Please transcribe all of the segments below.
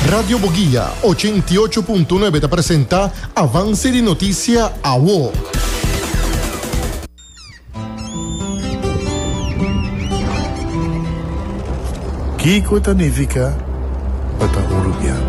Radio Boguia ochenta i ocho punto nuebe ta presenta Avance di Noticia Awo. Kiko ta nifica pa ta uruguiano?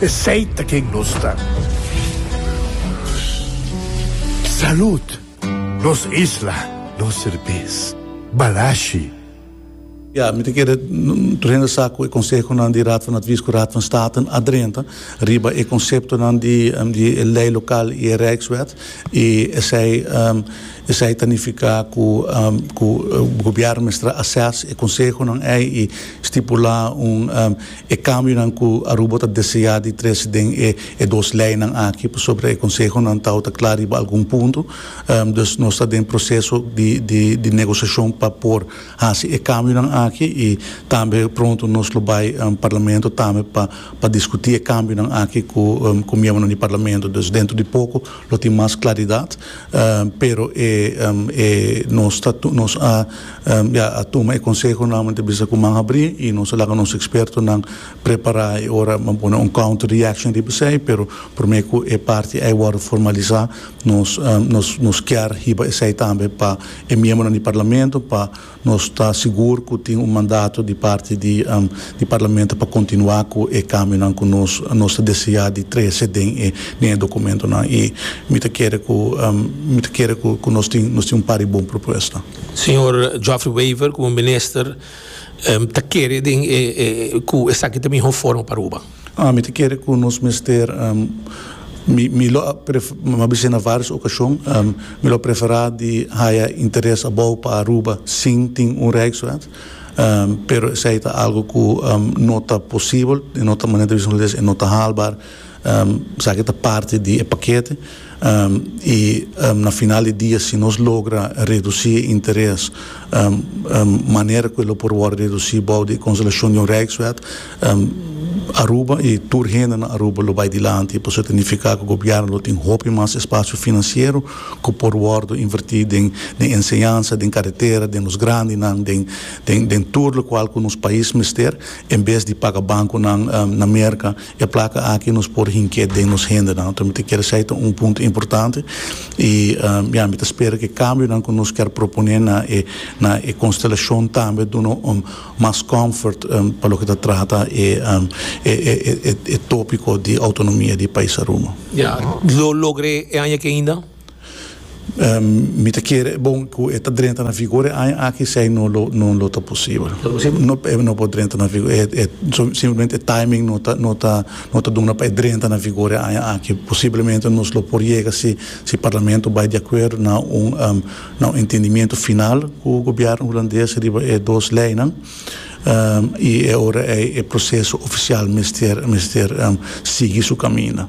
Esey ta ken nos ta. Salud! Nos isla, nos serbes. Balashi. Ya, mi ta kere renda sa ku e konsehonan di Raad van Advies ku Raad van Staten a drenta riba e konseptonan di e lei lokal i e rijkswet i esei esei ta nifiká ku ku gobièrnu mester a assess e konsehonan ei i stipulá un e kambionan ku Aruba ta deseá di trese den e dos leinan aki pasobra e konsehonan tau ta kla riba algun punto. Dus nos ta den proseso di negosiashon pa por hasi e kambionan aki i tambe pronto nos lo bai Parlamento tambe pa diskutí e kambionan aki ku miembronan di Parlamento. Dus dentro di poko Lo tin mas claridad, pero e e nos ta nos a ya a tuma e conseho nuevamente bisa cu man habri y nos a laga nos expertonan prepara y ora a pone un counter reaction riba esey, pero prome cu e parti ey wordo formaliza nos nos nos kier hiba esey tambe pa e miembronan di Parlamento pa Nos ta sigur cu tin un mandato di parti di di Parlamento pa continua cu e cambionan cu nos nos ta desea di trece den e den e documentonan y mi ta kere cu mi ta kere cu cu nos tin nos tin un par di bon propuesta. Señor Geoffrey Wever como Minister ta kere den e e cu esaki ta miho forma pa Aruba. Mi ta kere ku nos mester, mi lo a bisa na vários okashon, mi lo a preferá di haya interes abou pa Aruba sin tin un reiswet, pero esei ta algu ku no ta posibel, i no ta manera di bisa nos e no ta haalbaar, esaki ta parti di e pakete. I na final di dia si nos logra redusi e interes manera ku e lo por wòrdu redusi bou di e konselashon di un rijkswet, Aruba i tur hende na Aruba lo bai dilanti. Pasobra ta nifiká ku gobièrnu lo tin hopi mas espasio finansiero ku por wòrdu invertí den enseñansa, den karetera, den los grandinan, den tur lokual ku nos pais mester, en bes di paga bankunan na Merka. E plaka aki nos por hink'é den nos hendenan. Nos ta mester kere esei ta un punto importante i ya mi ta spera ku e kambionan ku nos ker proponé na e na e konstelashon tambe duna un mas comfort pa loke ta trata e e e tópiko di outonomia di e pais Aruba. Ya lo logr'é e aña aki ainda? Mi ta kere e bon ku e ta drenta na vigor e aña aki esei no lo no lo ta posibel. No ta posibel? No e no por drenta na vigor e simplemente e timing no ta no ta no ta duna pa e drenta na vigor e aña aki posiblemente nos lo por yega si si parlamento bai di akuerdo na un na un entendimiento final ku gobièrnu hulandes riba e dos leinan i e ora ei e proseso ofisial mester mester sigui su kaminda.